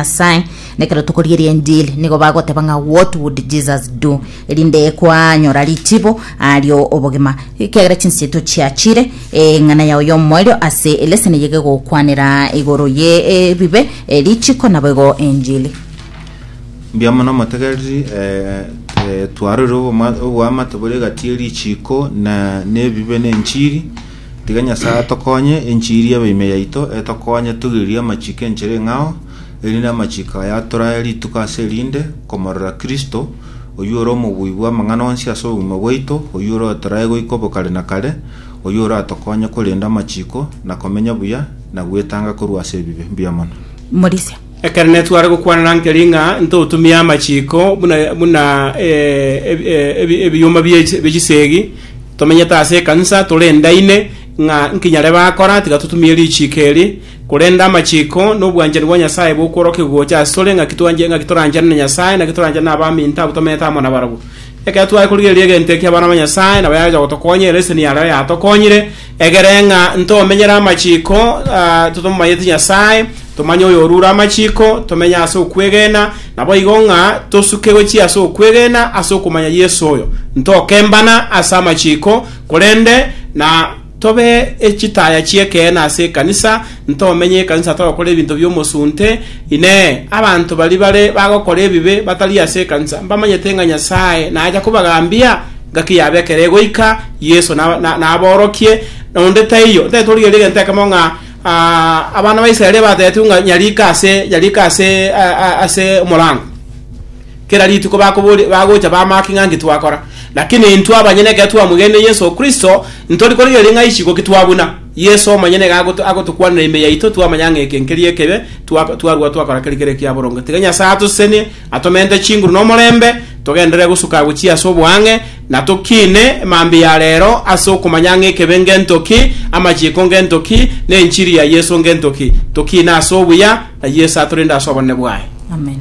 Nyasae, nekero tokoria erienjili nigo bagoteba ng'a what would Jesus do? erinde kwanyora richibo ario obogima ekiagera chinse chiaito chiachire eng'ana yao yomoerio ase eleseni yege gokwanera igoro ye ebibe eh, richiko naboigo enjili Mbuya mono motegereri eh, eh, twarorire oboma- oboamate bore egati ye richiko na nebibe na enchiri Tiga Nyasae atokonye, enchiri ebe ime yaito, etokonye togeririe amachiko enchera eng'ao, erinde amachiko aya atorae rituko ase erinde, komorora Kristo, oyio ore omobui bw'amang'ana onsi ase obogima bwaito, oyio ore otorae goika obo kare na kare, oyio oratokonye korenda amachiko, na komenya buya, na gwetanga korwa ase ebibe. Mbuya mono. Morisia. Ekero netware gokwanana nkeri ng'a ntotumie amachiko buna buna eh, ebi- eh, ebi- ebiyoma bie bie chisegi tomenyete ase ekanisa torendaine ng'a nkinyare bakora tiga totumie richiko eri korende amachiko nobwanchani bwa Nyasaye bokworokia gocha ase tore ng'aki twanje ng'aki toranchane na Nyasaye naki toranchane na abaminto abwo tomenyete amo nabarabwo Ekero tware korigereria egento eki abana ba Nyasaye nabo yaja gotokonya ereseni yareo yatokonyire Egere ng'a ntomenyere amachiko, ah, totomanyeti Nyasae, tomanye oyorure amachiko, tomenye ase okwegena, naboigo ng'a tosuke gochia ase okwegena ase okomanya Yeso oyo. Ntokembana ase amachiko, korende na tobe echitaya chi'ekeene ase ekanisa, ntomenye ekanisa togokora ebinto bi'omosunte, Inee, abanto baria bare bagokora ebibe batari ase ekanisa mbamanyete ng'a Nyasae nacha kobagambia? Gaki yabekire goika Yeso na- na- naborokie, na onde taiyo. Ntari torigereria egento ekemo ng'a ah, abana ba Israeli bateetigwe ng'a nyarika ase nyarika ase a- a- ase omorango. Kera rituko bakobori- bagocha bamaki ng'a nki twakora. Lakini intwe abanyene ekero twamoigenire Yeso Kristo, ntori korigereria ng'a isiko ki twabuna. Yeso omonyene iga agoto- agotokwanera ime yaito twamanya ng'a eke nkeria ekebe, twa- twarua twakora keri kere ekia boronge. Tiga Nyasae atosesenie, Atomente chinguru nomorembe, togenderere gosuka agochia ase oboang'e, na tokiine mambia ya reero ase okomanya ng'a ekebe ngento ki, amachiko ngento ki, na enchiri ya Yeso ngento ki. Tokiine ase obuya, na Yeso atorende ase obonene bwaye. Amen.